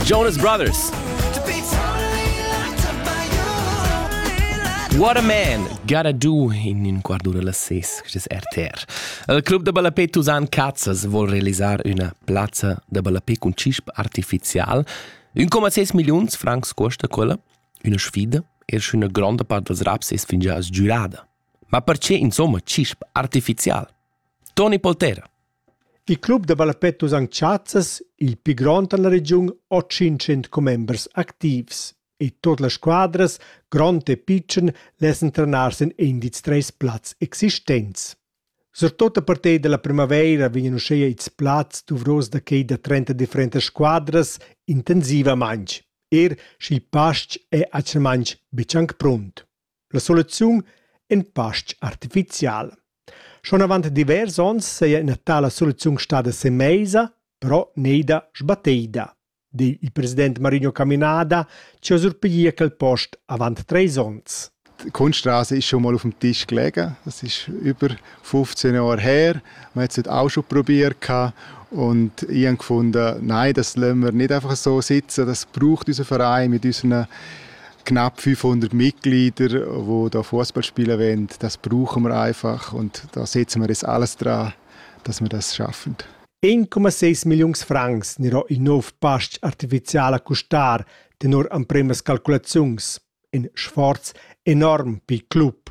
Jonas Brothers. What a man! Gotta do in in quarto della ses, quest RTR. Il club da ballapé Tusan Cazzas vuol realisar una plazza da ballapé con cisp artificial. 1,6 millions francs costa quella, una sfida, er schön una grande part dels raps es fingià sgiurada. Ma perché insomma cisp artificial? Tony Poltera. Il club da ballapè Tusan Tschazas il pli grond en la regiun ha tschintschient commembers activs e tut las squadras, grond e pitschen, lessan trenar sin indiz treis plazs existents. Surtut a partir dalla primavaira vegnan uschia ils plazs duvros da quei da 30 differentas squadras intensivamaintg, er sch'il pastg è actualmain betg anc pront. La soluziun in pastg artificial. Schon avant divers onns saja ina tala soluziun stada semeisa, però neida sbatteida, di il president Marinho Caminada che ha surpiglià quel post avant treis onns. Die Kunststraße ist schon mal auf dem Tisch gelegen. Das ist über 15 Jahre her. Man hat es auch schon probiert. Und ich habe gefunden, nein, das lassen wir nicht einfach so sitzen. Das braucht unser Verein mit unseren knapp 500 Mitglieder, die da Fußball spielen wollen, das brauchen wir einfach und da setzen wir das alles dran, dass wir das schaffen. 1,6 Millionen Francs nero il nov pastg artificiala custar tenor empremas calculaziuns. In sforz enorm per il club.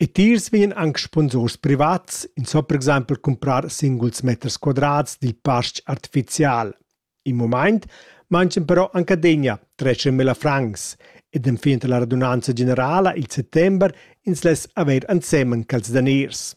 E tiers vegnan anc sponsurs privats, ins so per exempel cumprar singuls meters quadrats dil pastg artificial. In mumaint manchen però anc adegna 13.000 francs ed enfin la radunanza generala il settember ins less haver ensemen cals daners.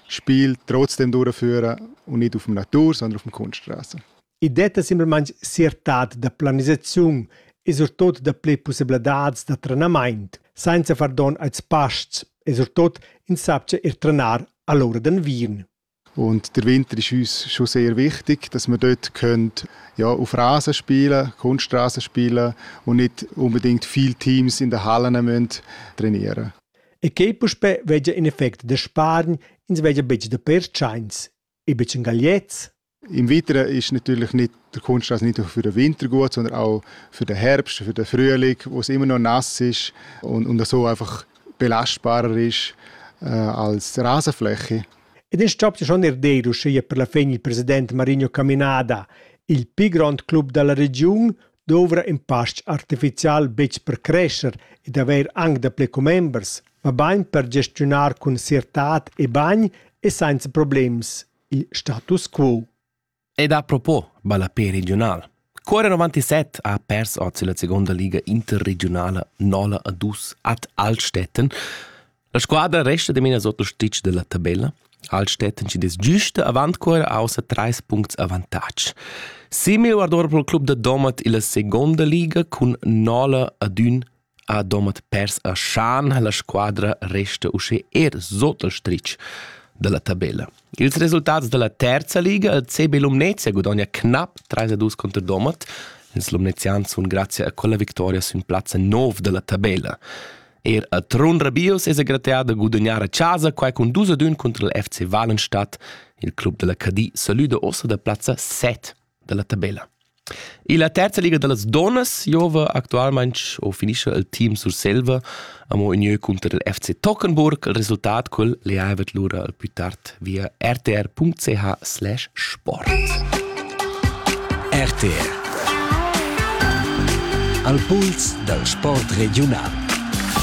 Spiel trotzdem duraffüra und nicht auf dem Natur, sondern auf dem Kunststraße. I detta simplamaing siertad da planisaziun e surtot da ple pussebladats da trenamaint, sainza far don als pasts e surtot insapcha ir trenar all'ora d'anviern. Und der Winter ist uns schon sehr wichtig, dass wir dort können, ja, auf Rasen spielen, Kunststraßen spielen und nicht unbedingt viele Teams in den Hallen müssen trainieren E quei puspè vegia in effect da spargn, ins vegia betg da pertschains. E betg en gagliets? Im Winter ist natürlich nicht, der Kunststraße nicht nur für den Winter gut, sondern auch für den Herbst, für den Frühling, wo es immer noch nass ist und, und so einfach belastbarer ist äh, als Rasenfläche. Ed in stop ja schon er deiro, sche per la fegn il president Marino Caminada, il pi grond club dalla regiun, dovra in pastg artificial betg per crescher ed haver anc dapli commembers, mabain per gestiunar cun siertad e bagn e senza problems il status quo. Ed a propos, ballapé regional. Cuore 97 ha pers oz la seconda liga interregionala 0 a 2 ad Altstetten. La squadra resta ademina sotto stitg dalla tabella. Altstetten ci des giusta avant cuore außer treis puncts avantatg. Simil guardora pro il club da Domat illa seconda liga cun Nola ad ün a Domat pers a Schan la squadra resta usce er sotto il stritg dalla tabella. Ils resultats dalla terza liga il CB Lumnezia guadagna knapp 3-2 contro Domat. Ils lumnezians sun grazie a quella victoria sün plazza 9 dalla tabella. Er a Trun Rabius es aggrattià da gudagnar a chasa quai cun dus ad ün cunter il FC Valenstadt. Il club da la Cadi salüda ossa da plazza 7 da la tabella. E la terza liga da las donnas giova actualmente o finisce il team Surselva amo in jeu cunter il FC Tockenburg. Il resultat quel le ha lura al più tard via rtr.ch/sport. RTR Al puls dal sport regiunal.